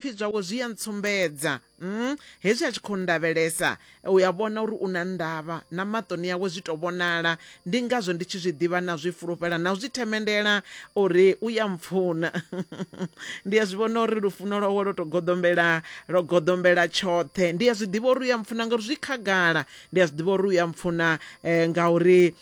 zwipfi zwawe zwi a ntsumbedza mm, hezwi a tshi khou ndavhelesa u ya vhona uri u na ndavha na maṱoni yawe zwi to vhonala ndi ngazwo ndi tshi zwi ḓivha na zwi fulufhela na u zwi themendela uri u ya mpfuna ndi a zwi vhona uri lufuno lwawe lwo to goḓombela lwo goḓombela tshoṱhe ndi a zwi ḓivha uri u ya mpfuna ngauri zwi khagala ndi a zwi ḓivha uri u ya mpfuna um ngauri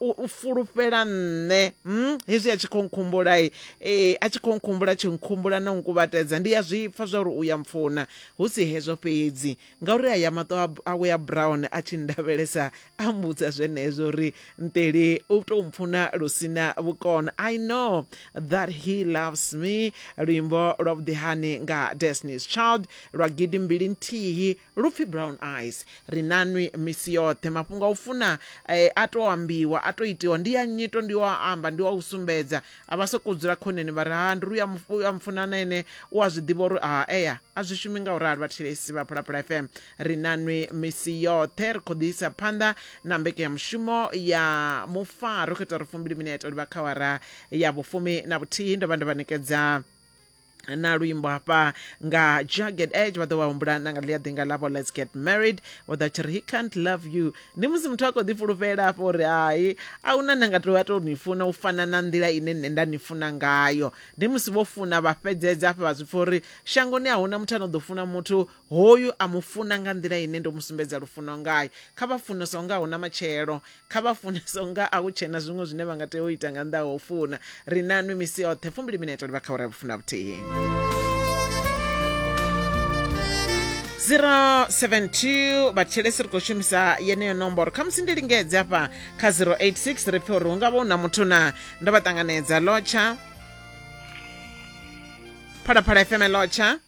um u fulufhela nṋe um hezwi a tshi khou nkhumbulai um eh, a tshi khou nkhumbula tshi nkhumbula na u nkuvhatedza ndi a zwi pfa zwa uri u ya mpfuna hu si hezwo fhedzi ngauri a ya maṱo awe a brown a tshi ndavhelesa a mbudza zwenezwo uri nteli u tou mpfuna lu sina vhukono i know that he loves me luimbo lwa vhuḓihani nga destinies child lwa gidi mbili nthihi Lu pfi Brown Eyes. Ri na nwi misi yoṱhe. Mafhungo a u funa e a tou ambiwa, a tou itiwa, ndi a nyito, ndi a u amba, ndi a u sumbedza. A vha sokou dzula khoneni vha ri, Ha, ndi ri u a mufuna na ene u a zwi ḓivha uri ha ea. A zwi shumi nga u ralo vhathetshelesi vha Phalaphala FM. Ri na nwi misi yoṱhe. Ri khou ḓi isa phanḓa na mbekenyamushumo ya Mufa. Ro khetha uri fumbili minete u livha kha awara ya vhufumi na vhuthihi. Ndo vha ndo vha ṋekedza. na luimbo hafha nga jagged edge vha ḓo vha humbula na nga ḽi a ḓinga ḽavho let's get married vho ḓa tshi ri he can't love you ndi musi muthu a khou ḓifhulufhela afho uri hai a huna nda nga tou a tou ni funa u fana na nḓila ine nṋe nda ni funa ngayo ndi musi vho funa vha fhedzedza afha vha zwi pfa uri shangoni a huna muthu a no ḓo funa muthu hoyu a mu funa nga nḓila ine ndo mu sumbedza lufuno ngayo kha vha fune so nga huna matshelo kha vha funese unga a hu tshena zwiṅwe zwine vha nga tea u ita nga nnḓa ha u funa ri na nwi misi yoṱhe fumbili minete ri vha kha uri vhufuna vhuthihi 072 vhathetshelesi ri khou shumisa yeneyo nomboro khamusi ndi lingedze afha kha 086 ri pfe uri hu nga vha hu na muthu na ndo vha ṱanganedza lotsha phalaphala fm lotsha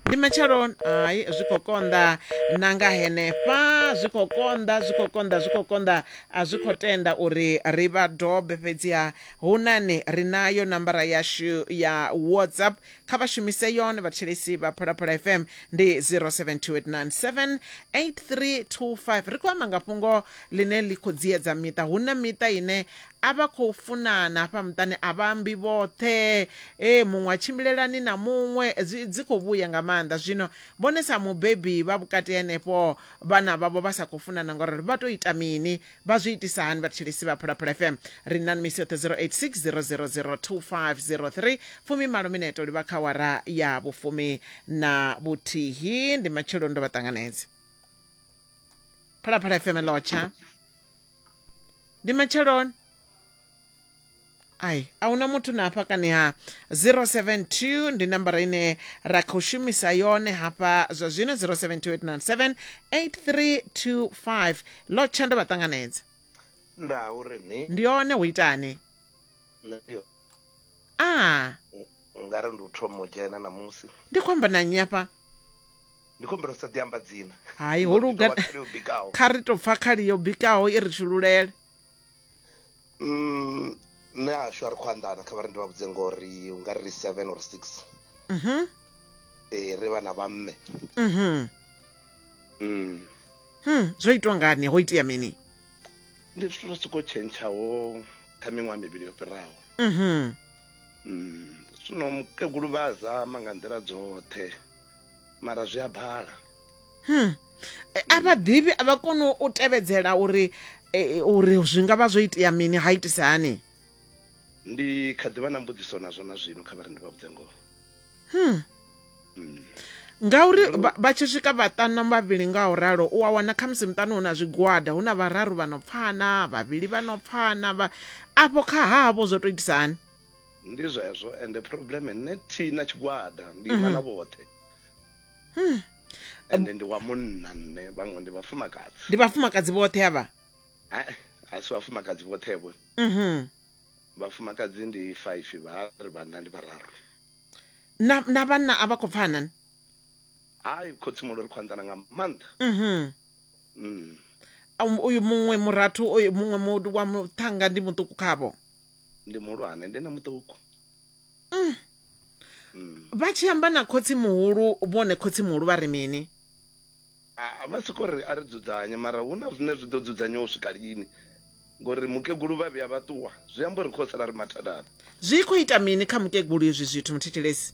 ndi matshelo hai zwi khou konḓa na nga henefha zwi khou konḓa zwi khou konḓa zwi khou konḓa a zwi khou tenda uri ri vha dobe fhedziha hu nani ri nayo nambara yashu ya whatsapp kha vha shumise yone vhathetshelesi vha phalaphala fm ndi 0728978325 ri khou amba nga fhungo ḽine ḽi khou dziedza miṱa hu na miṱa ine a vha khou funana hafha muṱani a vha ambi vhoṱhe e muṅwe a tshimbilelani na muṅwe dzi dzi khou vhuya nga maanḓa zwino vhone sa mubebi vha vhukati henefho vhana vhavho vha sa khou funana ngori ri vha to ita mini vha zwi itisa hani vhathetshelesi vha phalaphala fm ri na misi yoṱhe 0860002503 fumi malo mineto livha kha wara ya vhufumi na vhuthihi ndi matshelo ndo vha ṱanganedze phalaphala fm lotsha ndi matsheloni ai a huna muthu na hafha kani ha 072 ndi nambara ine ra khou shumisa yone hafha zwa zwino 0728978325 lo tsha ndo vha ṱanganedza nda uri ni ndi yone hu itani nṋe ndi a nga ri ndi u thoma u dzhena namusi ndi khou amba na nnyi hafha ndi khombela u sa ḓi amba dzina hai ho luga kha ri to pfa khali yo bikaho i ri tshululele mm nṋe ashu a ri khou anḓana kha vha ri ndi vha vhudze ngori u nga ri seven or six mhm eh ri vha na vha mme mhm mm hm zwo itwa ngani ho itea mini ndi zwithu zwa soko tshentshaho kha miṅwaha mivhili yo fhiraho mhm mm zwino mukegulu vha zama nga nḓila dzoṱhe mara zwi a bala hmm. Eh, a vha ḓivhi a vha koni u tevhedzela uri eh, uri zwi nga vha zwo itea mini ha itisa hani ndi kha ḓivha na mbudziso nazwo na zwino kha vharendi vha vhudze ngoho hmm. hmm. ngauri vha tshi swika vhaṱanu vhavhili nga u ralo u a wana khamusi muṱani hu na zwigwada hu na vhararu vha no pfana vhavhili vha no pfana afho kha havho zwo to itisa hani ndi zwezwo ende problem nṋe thi na tshigwada ndi ima na vhoṱhe Hmm. ende ndi wa munna nṋe vhaṅwe ndi vhafumakadzi ndi vhafumakadzi vhoṱhe avha Ha- ha si vhafumakadzi vhoṱhe vho Mhm. vhafumakadzi ndi five vha ri vhanna ndi vhararu na na vhanna a vha khou pfana ni hayi khotsimulo ri khou anḓana nga maanḓa Mhm. mm. Um, uyu muṅwe murathu uyu muṅwe mu- wa muṱhanga ndi muṱuku khavho ndi muhulwane ndi na muṱuku mm. mm. vha tshi amba na khotsi muhulu vhone khotsi muhulu vha ri mini ah, vha soko ri a ri dzudzanye mara hu na zwine zwi ḓo dzudzanyiwa u swika lini ngori mukegulu vha vhuya vha ṱuwa zwi amba uri khosala ri mathadana zwi khou ita mini kha mukegulu izwi zwithu muthetshelesi